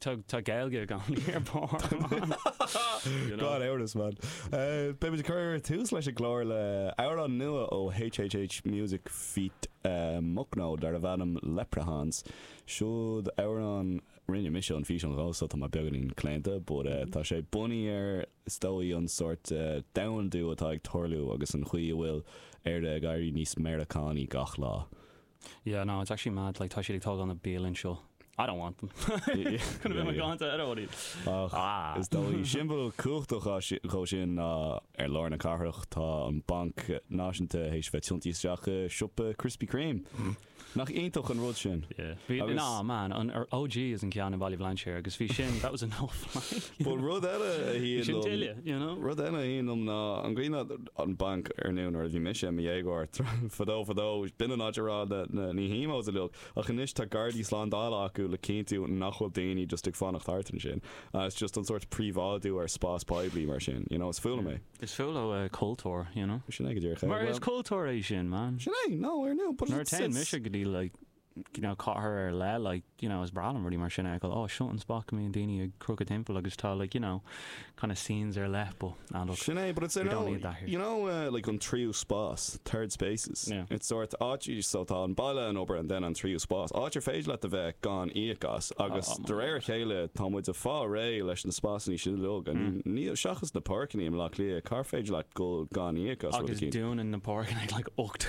Tá Gaeilge i gcónaí ar barr, man. Gan amhras, man. Beimid ag cur tús leis an gclár le amhrán nua ó HHH Music feat. Mucno darbh ainm Leprechauns. Siúd amhrán a rinne mise an físeán dhó so tá mé beagáinín claonta but tá sé bunaithe ar is dóigh an sórt domhandú atá ag tarlú agus an chaoi a bhfuil Éire ag éirí níos Meiriceánaí gach lá. Yeah, no, it's actually mad, like tá siad ag tógáil na bialaí anseo. I don't want them. Could have been my ganta ar fhód iad. Ach is dóigh, siombal cumhachtach dhó sin ná i lár na cathrach tá an Banc Náisiúnta théis bheith tiontaithe isteach i siopa Krispy Kreme. Nach iontach an rud sin? Yeah. Ná, man, an OG is an ceann i Baile Bhlainséir agus bhí sin, that was a no-fly. Bhuel, rud eile a shuíonn liom, rud eile a shuíonn liom ná an gcaoi ná an banc ar ndóigh nuair a bhí mise i mo dhéagóir, tráth fadó fadó, b'in an áit a raibh na, na, na hemos uilig, ach anois tá gardaí slándála acu le cinntiú nach bhfuil daoine just ag fanacht thart ansin. It's just an sórt príobháidiú ar spás poiblí mar sin, you know, is fuath liom é. Is fuath leo cultúr, you know. Sin é go díreach é. Mar is cultúr é sin, man. Sin é, no, ar ndóigh, but it's, it's. Nuair a téann mise go dtí like. you know, cathair ar leith, like, you know, is breá liom rudaí mar sin a fheiceáil, oh, seo an spot go mbíonn daoine ag crochadh timpeall agus tá, like, you know, kind of scenes ar leith, but, ah, look, Sin é, but it's, we don't need that here. you know, uh, like an tríú spás, third spaces, Yeah. it's sórt áit, so tá an baile, an obair and then an tríú spás, áit ar féidir leat a bheith gan íoc as agus, de réir a chéile, tá muid ag fáil réidh leis na spásanna sin a leoga, níl, seachas na páirceanna i mBleá Cliath, cár féidir leat dul gan íoc as rud éigin? Agus dúnann na páirceanna ag, like, ocht